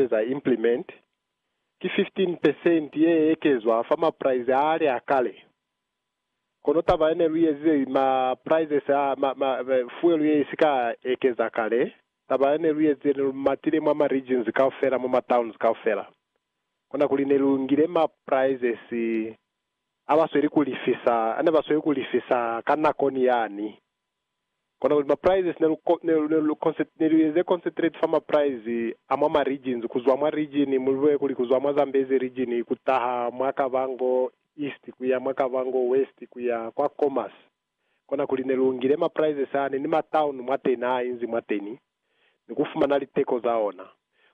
eza implement, ki 15 percent ye ekezwa fa ma price a ali a kale. Kono taba ye ne lu ezize ma prices a ma, ma, ma fuel ye i si ka ekeza kale, taba ye ne lu ezize ne lu matile mwa ma regions kaufela, mwa ma towns kaufela. Kona kuli ne lu ngile ma prices a ba sweli ku lifisa, a ne ba sweli ku lifisa ka nako ni yani. Kona kuli ma prices ne lu ne lu ne lu concent ne lu eze concentrate fa ma price a mwa ma regions kuzwa mwa region mu lube kuli kuzwa mwa Zambezi region kutaha mwa Kavango East kuya mwa Kavango West kuya kwa Khomas kona kuli ne lu ngile ma prices a ne ni ma town mwateni a inzi mwateni ni ku fumana liteko za ona.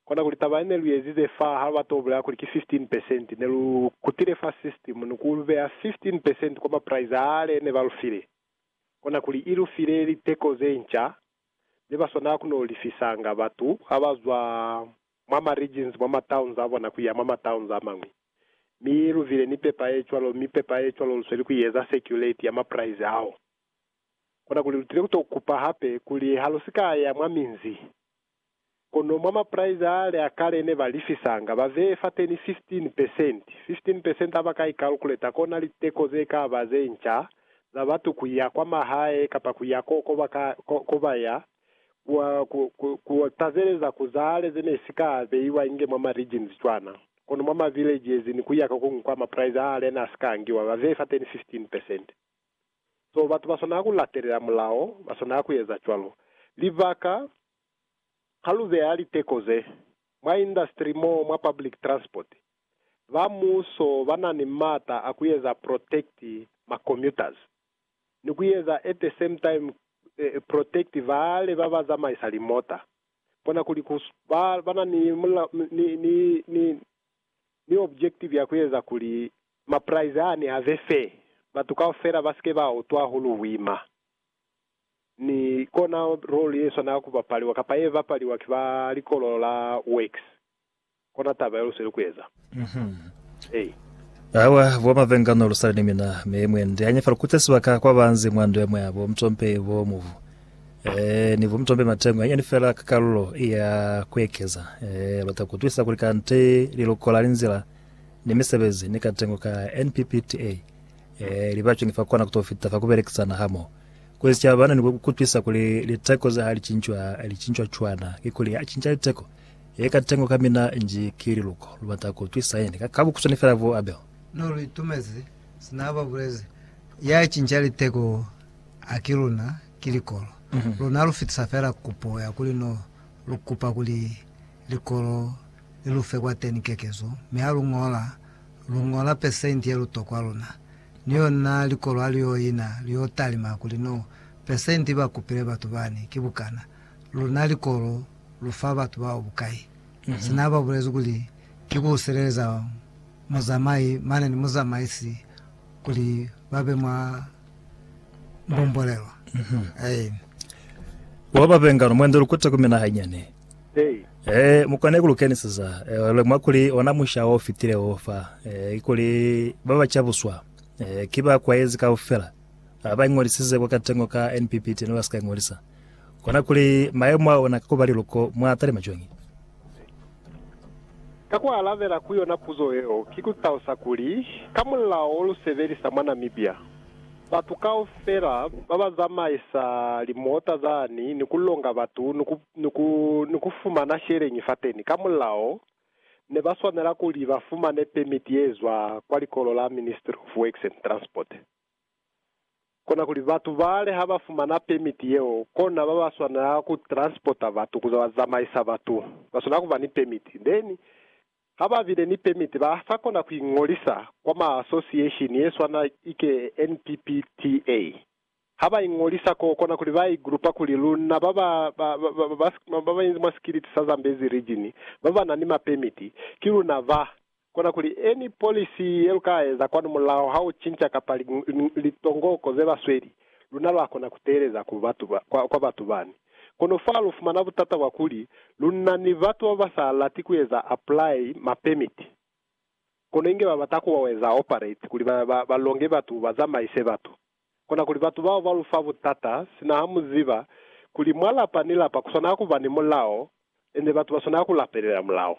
Kona kuli taba ye ne lu ezize fa ha batu ba bulela kuli ki 15 percent ne lu kutile fa system ni ku lu beya 15 percent kwa ma price a le ne ba lu file. kona kuli i lu file liteko ze nca ze ba swanela ku no lifisanga batu ha ba zwa mwa ma regions mwa ma towns a bona ku ya mwa ma towns a mañwi. Mi i lu file ni pepa ye cwalo, mi pepa ye cwalo lu sweli ku i eza circulate ya ma prize ao. Kona kuli lu tile ku to kupa hape kuli ha lu si ka ya mwa minzi, Kono mwa mapraizi a le a kale ne ba lifisanga, ba veye fateni 15 percent. 15 percent ha ba ka ikalkuleta, kona liteko ze ka ba ze nca za batu ku ya kwa mahae kapa ku ya ko, ko ba ka, ko, ko ba ya, ku, ku, ku, ku tazeleza ku za hale ze ne si ka beiwa inge mwa ma regions cwana. Kono mwa ma village ye ziñwi ku ya ka kuñwi kwa mapraizi a hale ne a si ka angiwa, ba veye fateni 15 percent. So batu ba swanela ku latelela mulao, ba swanela ku eza cwalo. Libaka, Ha lu beya liteko ze mwa industry mo mwa public transport, ba muso ba na ni m'ata a ku eza protect ma commuters, ni ku eza at the same time protect bale ba ba zamaisa limota. Bona kuli ku ba na ni, ni, ni, ni, ni objektivi ya ku eza kuli mapraize aani a be fe, batu kaufela ba si ke ba utwa hahulu buima. Ni kona role ye swanela ku bapaliwa, kapa ye bapaliwa ki ba likolo la Works. Kona taba ye lu sweli ku eza. Ei. Awa, bo Mavengano lu sali ni mina, mi mwendi a nyefa lu kutle sibaka kwa banzi mwa ndu ya mwa bo Mtompe, bo Mubu. Ni vumtombe mateño anyani fela ka kalulo ya kuekeza. Luta kutwisa kuli kanti lilukola, linzila, ni misebezi ni katengo ka NPPTA li bacuni fa kona kuto fita fa kubelekisana hamoho kuli sicaba ni kutwisa kuli liteko ze ha licincwa licincwa cwana. Kikuli ha cinca liteko, ye katengo ka mina nji ki liluko. Lubata kutwisa yani ka kabukuswani fela vu Abel. No lu itumezi sina ababulezi ya cinca liteko. Haki luna ki likolo, luna lu fitisa fela kupo ya kuli no lu kupa kuli likolo li lu fe kwateni kekezo, mi ha lu ñola, lu ñola pesenti ye lu tokwa luna. Ni yona likolo ha li yo ina, li yo talima kuli no pesenti ba kupile batu bani ki bukana, luna likolo lu fa batu bao bukai. Sina ba bulezi kuli ki ku sileleza muzamai mane ni muzamaisi kuli ba be mwa Bombolelo. Aye. Wa ba bengano mwende lukute ku mina hanyane. Hey. Eh, mukwane ku lukeniseza. Eh, le mwa kuli ona musha o fitile o fa. Eh, kuli ba ba chabuswa. Eh, ki ba kwayezi ka ufela. Ba ba ingolisize kwa katengo ka NPPT no ba ska ingolisa. Kona kuli maemo a ona ka kuba liluko mwa tali majongi. Ka ku alabela ku yona puzo yeo, ki ku talusa kuli, ka mulao lu sebelisa mwa Namibia, batu kaufela ba ba zamaisa limota zani ni ku longa batu ni ku fumana sheleñi fateni ka mulao, ne ba swanela kuli ba fumane pemiti ye zwa kwa Likolo la Ministry of Works and Transport. Kona kuli batu bale ha ba fumana pemiti yeo, kona ba ba swanela ku transporta batu kuza ba zamaisa batu, ba swanela kuba ni pemiti. Then, ha ba bile ni pemiti, ba sa kona ku ingolisa kwa ma association ye swana ike NPPTA. Ha ba ingolisa koo, kona kuli ba i grupa kuli luna ba ba, ba, ba, ba, ba, ba ba inzi mwa sikiliti sa Zambezi Region, ba ba na ni ma pemiti, ki luna ba Kona kuli, Any policy ye lu ka eza kwanu mulaho ha u cinca kapa litongoko ze ba sweli, luna lwa kona ku teeleza ku batu ba, kwa, kwa batu bani. Kono fa lu fumana butata bwa kuli, lu na ni batu ba ba sa lati ku eza apply ma permit, kono inge ba bata ku ba eza operate, kuli ba, ba, ba longe batu, ba zamaise batu. Kona kuli batu bao ba lu fa butata, sina ha mu ziba kuli mwa lapa ni lapa ku swanela ku ba ni mulao, ende batu ba swanela ku lapelela mulao.